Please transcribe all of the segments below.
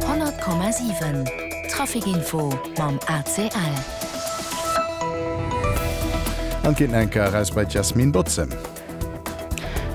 100,7 Trafic Info mam ACL. An ginn eng Kéier eraus bei d'Yasmine Bautzen.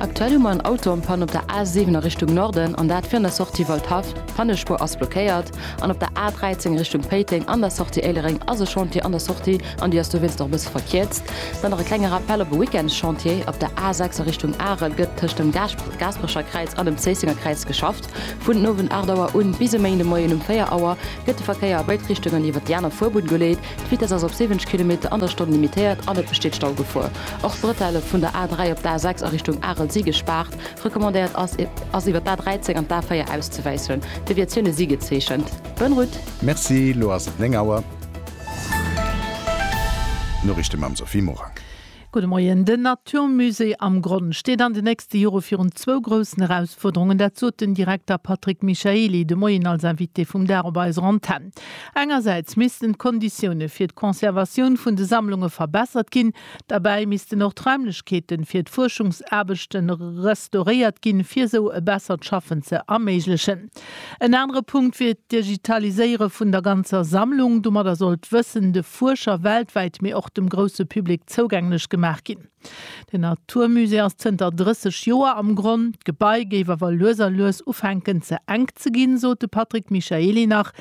Aktuell hu mer en Auto en panne op der A 7 a Richtung Norden, an dat virun der Sortie Waldhaff. D'Pannespuer ass blockéiert. An op der A 13 Richtung Péiteng an der Sortie Éilereng ass e Chantier an der Sortie an déi ass dowéinst och e bësse verkierzt. Dann nach e klenge Rappell op e Weekendschantier, Op der A 6 a Richtung Arel gëtt tëscht dem Gaasperecher Kräiz an dem Zéissenger Kräiz geschafft. Vun den Owend 8 Auer un bis e Méindemoien um 4 Auer gëtt de Verkéier a béid Richtungen iwwert déi aner Fuerbunn geleet. D'Vitess ass op 70 Kilometer an der Stonn limitéiert an et besteet Staugefor. Och d'Bretelle vun der A3 op d'A6 a Richtung Arel si gespaart. Recommandéiert ass ass iwwert d'A13 an d'A4 auszewäissen. Deviatioune si gezeechent. Bonne route! Merci, lo ass et 9 Auer. D'Noriichte mam Sophie Morang. Gudde Moien. Den Natur Musée am Gronn steet an de nächste Jore virun zwou groussen Erausfuerderungen. Dat sot den Direkter Patrick Michaely de Moien als Invité vum Dag op eiser Antenn. Engersäits missten d'Konditioune fir d'Conservatioun vun de Sammlunge verbessert ginn. Derbäi missten och d'Raimlechkeete fir d'Fuerschungsaarbechte restauréiert ginn, fir esou e bessert Schaffen ze erméiglechen. En anere Punkt wier d'Digitaliséiere vun der ganzer Sammlung. Domadder soll d'Wëssen de Fuerscher weltwäit, mee och dem grousse Public zougänglech gemaach ginn. Den Naturmusée ass zënter 30 Joer am Gronn. D'Gebai géif awer lues a lues ufänken ze enk ze ginn, sot de Patrick Michaely nach.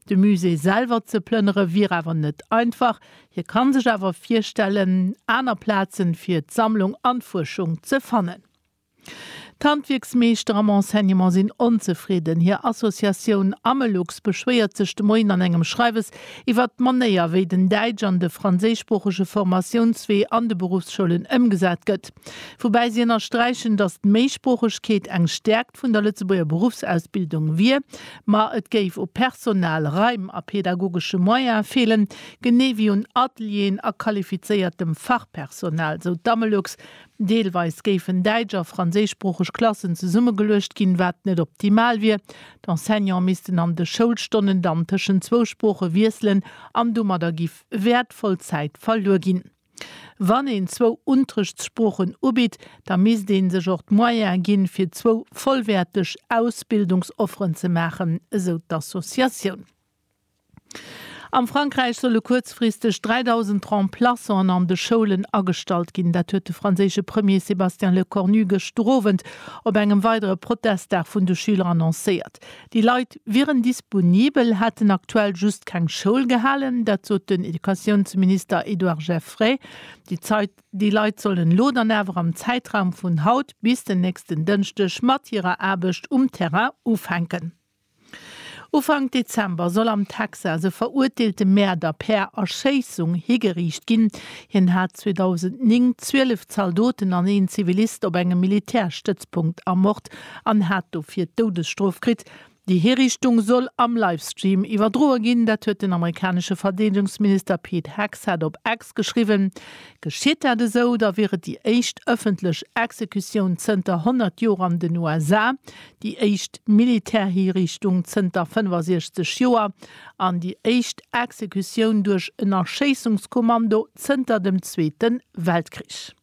De Musée selwer ze plënnere wier awer net einfach. Hie ka sech awer virstellen, aner Plaze fir d'Sammlung an d'Fuerschung ze fannen. D'Handwierksmeeschter am Enseignement sinn onzefridden. Hir Associatioun Amelux beschwéiert sech de Moien an engem Schreiwes iwwer d'Manéier, wéi den däitsch an de franséischsproochege Formatiounswee an de Beruffsschoulen ëmgesat gëtt. Woubäi si ënnersträichen, datt d'Méisproochegkeet eng Stäerkt vun der Lëtzebuerger Beruffsausbildung wier, ma et géif u Personal, Raim a pedagogesche Moyene feelen, genee wéi un Atelieren a qualifizéiertem Fachpersonal, sou d'Amelux Deelweis géifen däitsch a franséischsproocheg Klassen zesummegeluecht ginn, wat net optimal wier. D'Enseignante missten an de Schoulstonnen dann tëschent zwou Sprooche wiesselen an domadder gi wäertvoll Zäit verluer ginn. Wann een zwou Unterrichtssproochen ubitt, da misst ee sech och d'Moyene ginn, fir zwou vollwäerteg Ausbildungsofferen ze maachen, esou d'Associatioun. Am Frankräich solle kuerzfristeg 3.000 Remplaçanten an de Schoulen agestallt ginn. Dat huet de franséische Premier Sébastien Lecornu gëschter Owend op engem weidere Protestdag vun de Schüler annoncéiert. Déi Leit wieren disponibel, hätten aktuell just keng Schoul gehalen. Dat sot den Educatiounsminister Edouard Geffray. Déi Leit sollen elo dann awer am Zäitraum vun haut bis den nächsten Dënschdeg mat hirer Aarbecht um Terrain ufänken. Ufank Dezember soll am Texas e verurteelte Mäerder per Erschéissung higeriicht ginn. Hien hat 2009 zwielef Zaldoten an een Zivilist op engem Militärstëtzpunkt ermort an hat dofir d'Doudesstrof kritt. Déi Hiriichtung soll am Livestream iwwerdroe ginn, dat huet den amerikanesche Verdeedegungsminister Pete Hegseth op X geschriwwen. Geschitt dat esou, da wier et déi éischt ëffentlech Exekutioun zënter 100 Joer an den USA. déi éischt Militärhiriichtung zënter 65 Joer an déi éischt Exekutioun duerch en Erschéissungskommando zënter dem Zweete Weltkrich.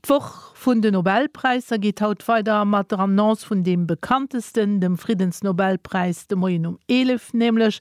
D'Woch vun de Nobelpräisser geet haut weider mat der Annonce vun deem bekanntesten, dem Friddensnobelpräis de Moien um 11, nämlech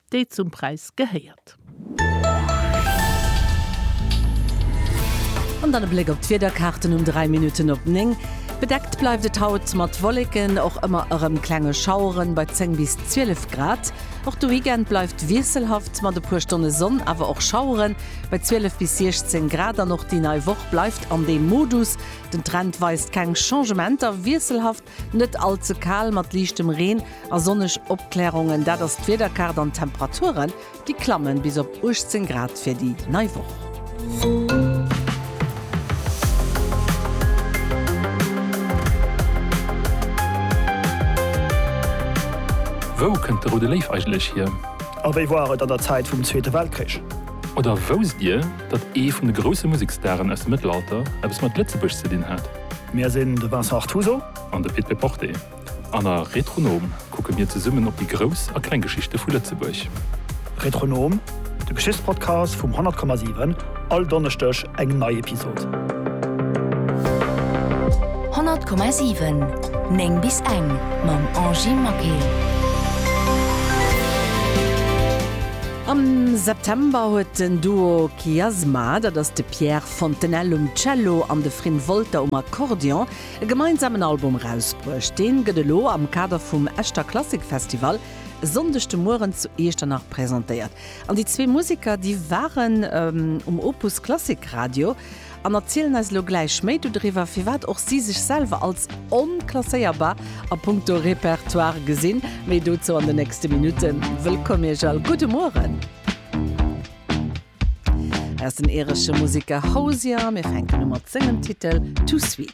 déi zum Präis gehéiert. An dann e Bléck op d'Wiederkaarten um 3 Minutten op 9. Bedeckt bleift et haut mat Wolleken, och ëmmer erëm klenge Schaueren bei 10 bis 12 Grad. Och de Weekend bleift wiesselhaft mat e puer Stonne Sonn, awer och Schaueren bei 12 bis 16 Grad. An och déi nei Woch bleift an deem Modus, den Trend weist keng Changementer, wiesselhaft Net all ze kal mat liichtem Reen a sonneg Opklärungen, dat ass d'Wiederkaart an d'Temperature gi klamme bis op 18 Grad fir déi nei Woch. Wou kënnt de Roude Léif eigentlech hier? A wéi war et an der Zäit vum Zweete Weltkrich? Oder wousst Dir, datt ee vun de grousse Musekstaren aus dem Mëttelalter eppes mat Lëtzebuerg ze dinn hat? Mir sinn de Vincent Artuso an de Pit Péporté an a Retronom kucke mir zesummen op déi grouss a kleng Geschichte vu Lëtzebuerg. Retronom, de Geschichtspodcast vum 100,7, all Donneschdeg eng nei Episod. 100,7 9 bis eng mam Angie Maquet. Am September huet den Duo Kiasma, dat ass de Pierre d'Fontenelle um Cello an de Frin Wolter um Akkordeon e gemeinsamen Album erausbruecht. Deen gëtt elo am Kader vum Echter Klassik Festival e Sonndeg de Mueren zu Iechternach presentéiert. An déi zwee Museker, déi waren um Opus Klassik Radio an erzielen eis elo gläich méi dodriwwer, firwat och si sech selwer als onklasséierbar a punkto Repertoire gesinn. Méi dozou an de nächste Minutten. Wëllkomm Iech all, gudde Mueren! Ass den iresche Museker Hozier. Mir fänken u mat sengem Titel Too Sweet.